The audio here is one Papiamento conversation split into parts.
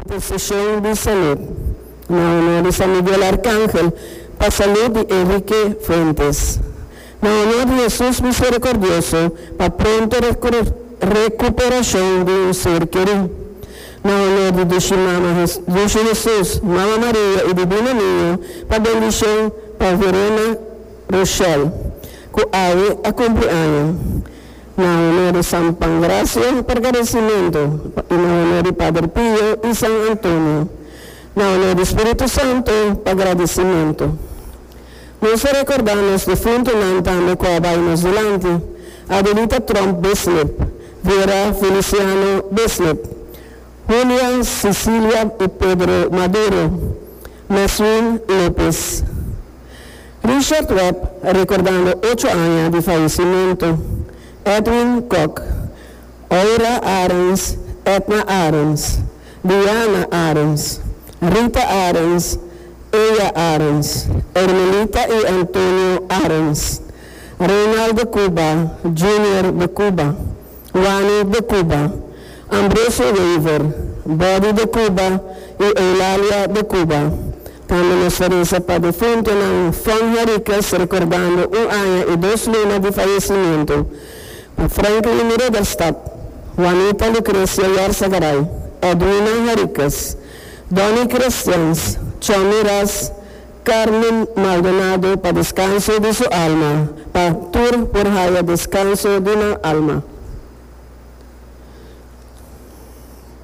Posicion di Salud, na honor di San Miguel Arcangel pa salud di Enrique Fuentes, na honor di Hesus Misericordioso pa pronto recuperacion di un ser keri, na honor di Dushi Mama Dushi Hesus, Mama Maria y Divino Niño pa bendicion pa Verena Rochelle cu awe a cumpli aña. Na honor di San Pangracio pa agradecimento y na honor di Pader Pio y San Antonio na honor di Spiritu Santo pa agradecimento. Nos ta recorda nos difuntonan tambe cu a bay nos dilanti, Adelita Tromp Bislip, Vera Feliciano Bislip, Julia Cecilia y Pedro Maduro, Maswin Lopez. Richard Webb recordando ocho aña di faecimento, Edwin Kok, Oira Arens, Edna Arens, Diana Arens, Rita Arens, Eya Arens, Ermelita y Antonio Arens, Reinaldo Cuba, Junior de Cuba. Wani de Cuba, Ambrosio Wever, Body de Cuba y Eulalia de Cuba. Tambe nos a reza pa defuntonan Fon Henriquez recordando un aña y dos luna di fallecimiento pa Franklin Ruderstad, Juanita Lucrecia Yarza-Garay, Edwina Henriquez, Donny Christians, Chomy Ras, Carmen Maldonado pa descanso di su alma pa tur por haya descanso di nan alma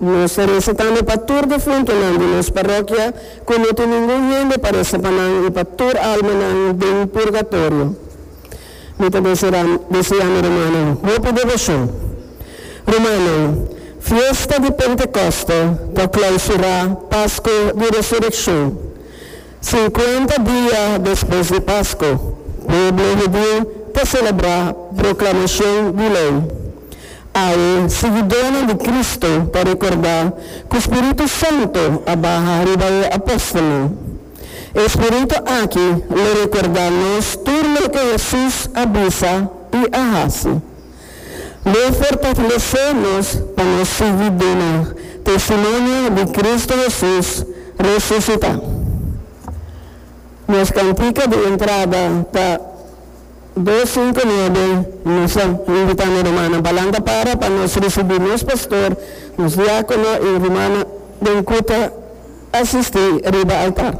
Nos ta reza tambe pa tur difuntonan di nos parroquia cu no tin ningun hende pa reza pa nan y pa tur almanan den purgatorio Mi ta desea desea mi rumannan hopi devocion Rumannan Fiesta di Pentecoste ta clausura Pasco di Resureccion Sinkuenta dia despues di Pasco, pueblo hudiu ta celebra Proclamacion di Ley. Awe, siguidónan di Cristo ta recordá cu Spiritu Santo a baha riba e apóstolnan. E Spiritu aki lo recordá nos tur loke Jesús a bisa i a haci. Lo fortalesé nos pa nos sigui duna testimonio di Cristo Hesus resusitá. Nos cantica di entrada ta dos sinku nuebe Misa. Lo invitá nos rumannan balanta para pa nos ricibi nos pastor, nos diácono y rumannan den cu ta asistí riba altar.